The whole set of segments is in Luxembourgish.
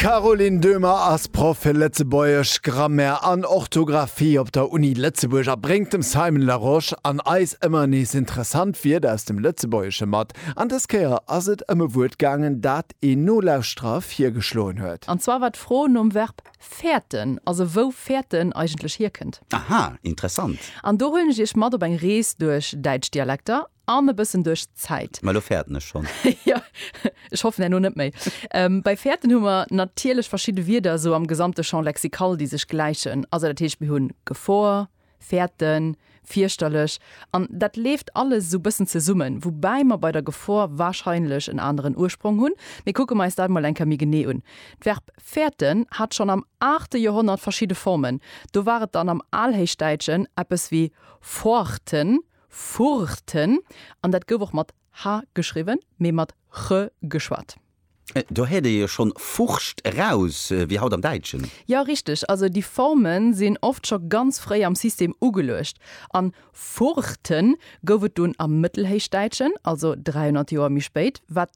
D'Caroline Döhmer ass Proff fir Lëtzebuergesch, Grammaire an Orthografie op der Uni Lëtzebuerg a bréngt dem Simon Larosche an eis ëmmer nees interessant Wierder aus dem Lëtzebuergesche mat. An dës Kéier ass et ëm e Wuert gaangen, dat een Nolauschterer virgeschloen huet. An zwar war d'Fro nom Verb fäerten, also wou fäerten eigentlech hierkënnt. Aha, interessant. An do huelen ech Iech mat op eng Rees duerch däitsch Dialekter. an e bëssen duerch d'Zäit. Mä elo fäerten ech schonn. Jo, ech hoffen herno net méi. Bei fäerten hu mer natierlech verschidde Wierder esou am gesamte Champ lexical, déi sech gläichen. Also dat heescht, mir hunn Gefor, fäerten, fierchterlech, an dat leeft alles esou e bëssen zesummen, woubäi mer bei der Gefor warscheinlech en aneren Ursprong hunn. Mee kucke mer eis dat emol eng Kéier méi genee un. D'Verb fäerten hat schonn am aachte Joerhonnert verschidde Formen. Do war et dann am Alhéichdäitschen eppes wéi foarten Furten, an dat gouf och mat ha geschriwwen, mee mat che geschwat. Do héiert ee jo schonn Furcht eraus, wéi haut am Däitschen. Jo, richteg. Also déi Forme sinn oft scho ganz fréi am System ugeluecht. An Furten gouf et dunn am Mëttelhéichdäitschen, also 300 Joer méi spéit, wat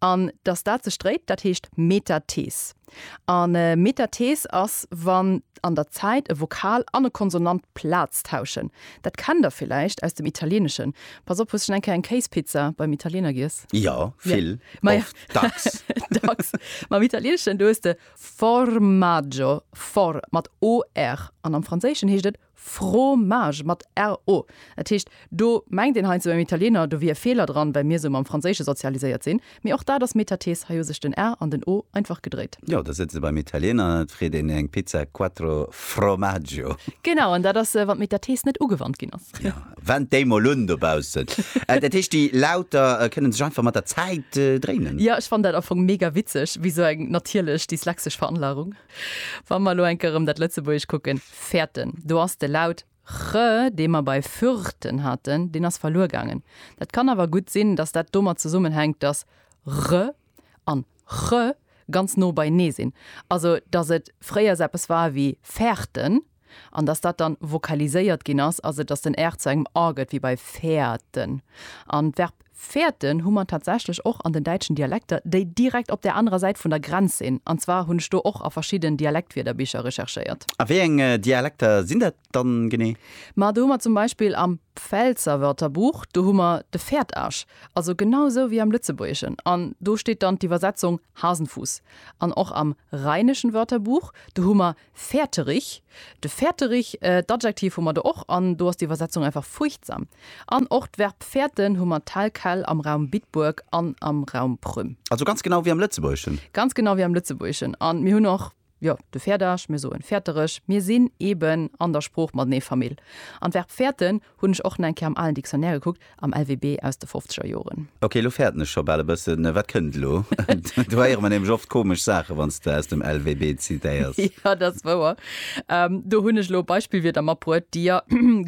An datt dat sech dréit, dat heescht Metathees. A Metathees ass, wann an der Zäit e Vokal an e Konsonant Plaz tauschen. Dat kennt Der villäicht aus dem Italieeneschen. Pass op, hues schonn eng Kéier eng Kéispizza beim Italiener giess? Jo, vill, oft, dacks. Dacks. Mam Italieneschen, do hues de formaggio, for mat OR. An am Franséischen heescht et Fromage mat RO. Dat heescht, do mengt een heiansdo beim Italiener, do wier e Feeler dran, well mir esou mam Franséische sozialiséiert sinn. Mee och dat ass Metathese, hei hu sech den R an den O einfach gedréit. Jo, da sëtze se beim Italiener an et freet een eng Pizza Quattro Formaggio. Genau, an dat ass, wann d'Metathese net ugewannt ginn ass. Jo, wend déi mol un dobaussen. Dat heescht, déi Lauter kënne sech einfach mat der Zäit dréinen. Jo, ech fannen dat am Fong mega witzeg, wéi esou eng natierlech dyslexesch Veranlagung, wa mer elo eng Kéier erëm dat Lëtzebuergesch kucken. Fäerten, do ass de Laut ch, dee mer bei Fürten haten, deen ass verluer gaangen. Dat kann awer gutt sinn, datt dat domat zesummenhänkt, datt r an ch ganz no beienee sinn, also datt et fréiers eppes war wéi Färten an datt dat dann vokaliséiert ginn ass, also datt den r zu engem a gëtt, wéi bei Fäerten. An d'Verb Fäerten hu mer tatsächlech och an den däitschen Dialekter, déi direkt op där anerer Säit vun der Grenz sinn. An zwar hunn ech do och a verschidden Dialektwierderbicher recherchéiert. A wéi eng Dialekter sinn dat dann genee? Ma do hu mer zum Beispill am Pfälzer Wörterbuch, do hu mer de Fäertasch, also genau esou wéi am Lëtzebuergeschen, an do steet dann d'Iwwersetzung Hasenfuss. An och am Rheinischen Wörterbuch, do hu mer Fäerterich, de Fäerterich, d'Adjektiv hu mer do och, an do ass d'Iwwersetzung einfach fuerchtsam. An och d'Verb fäerten hu mer tel quel am Raum Bitburg an am Raum Prüm. Also ganz genau wéi am Lëtzebuergeschen? Ganz genau wéi am Lëtzebuergeschen. An mir hunn och, jo, de Fäerdeg, mir soen Fäerterich. Mir sinn eben an der Sprooch matenee Famill. An d'Verb fäerten Hunn ech och na eng Kéier am alen Dictionnaire gekuckt, am LWB aus de fofzeger Joren. Ok, lo fäerten ech scho bal e bëssen. Wat kënnt elo? Do héiere mer nämlech oft komesch Saachen, wann s de aus dem LWB zitéiers. Jo, dat ass wouer. Do hunn ech elo Beispillwierder matbruet, déi jo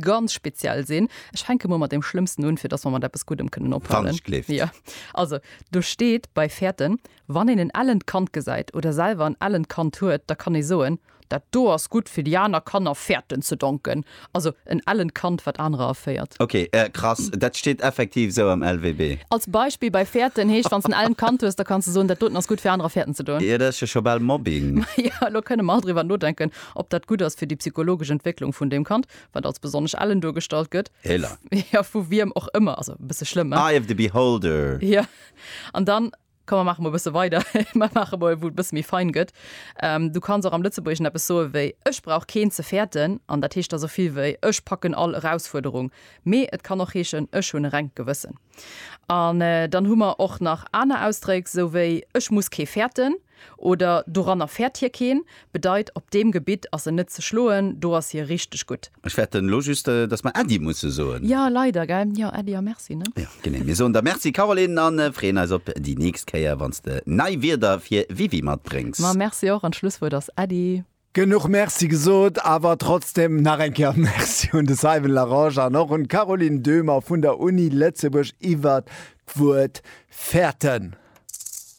ganz speziell sinn. Ech fänke mol mat deem Schlëmmsten un, fir dass mer mat eppes Guddem kënnen ophalen. Wann ech gleeft. Jo. Also, do steet bei fäerten, Wann een en ellent Kand gesäit oder selwer en ellent Kand huet, da kann ee soen, Dat do ass gutt fir déi aner Kanner Fährten ze donken, also en ellent Kand wat anerer erféiert. Ok, krass, dat steet effektiv esou am LWB. Als Beispill bei Fährten heescht, wann s en ellent Kand hues, da kanns de soen, dat doten ass gutt fir anerer Fährten ze doen. Jo, dat ass jo scho bal Mobbing. Maja, elo kënne mer all driwwer nodenken, ob dat gutt ass fir déi psychologesch Entwécklung vun deem Kand, wat als besonnesch ellen duergestallt gëtt. Héla. Jo, vu wiem och ëmmer, also e bësse schlëmm, hein? Eye of the beholder. Jo, an dann Komm mer maache mol e bësse weider, mer maache mol, wou et e bësse méi fein gëtt. Du kanns och am Lëtzebuergeschen eppes soe wéi Ech brauch keen ze fäerten. An dat heescht da sou vill wéi Ech packen all Erausfuerderung. Mee et kann och heeschen Ech hunn e rengt Gewëssen. An dann hu mer och nach aner Ausdréck, sou wéi Ech muss kee fäerten oder Doranner fäert hie keen. bedeit op deem Gebitt ass en net ze schloen, do ass hie richteg gutt. Ech fäerten elo just, datt mer Äddi musse soen. Jo, leider, gell? Jo, Äddi a Merci, ne? Jo, genee. Mir soen der Merci, Caroline, a freeën eis op déi nächst Kéier, wann s de nei Wierder fir Wiwi matbréngs. Ma merci och, an d'Schlusswuert ass Äddi. Genuch Merci gesot, awer trotzdem nach eng Kéier Merci un de Simon Larangé an och un d'Caroline Döhmer vun der Uni Lëtzebuerg iwwert d'Wuert. Fäerten.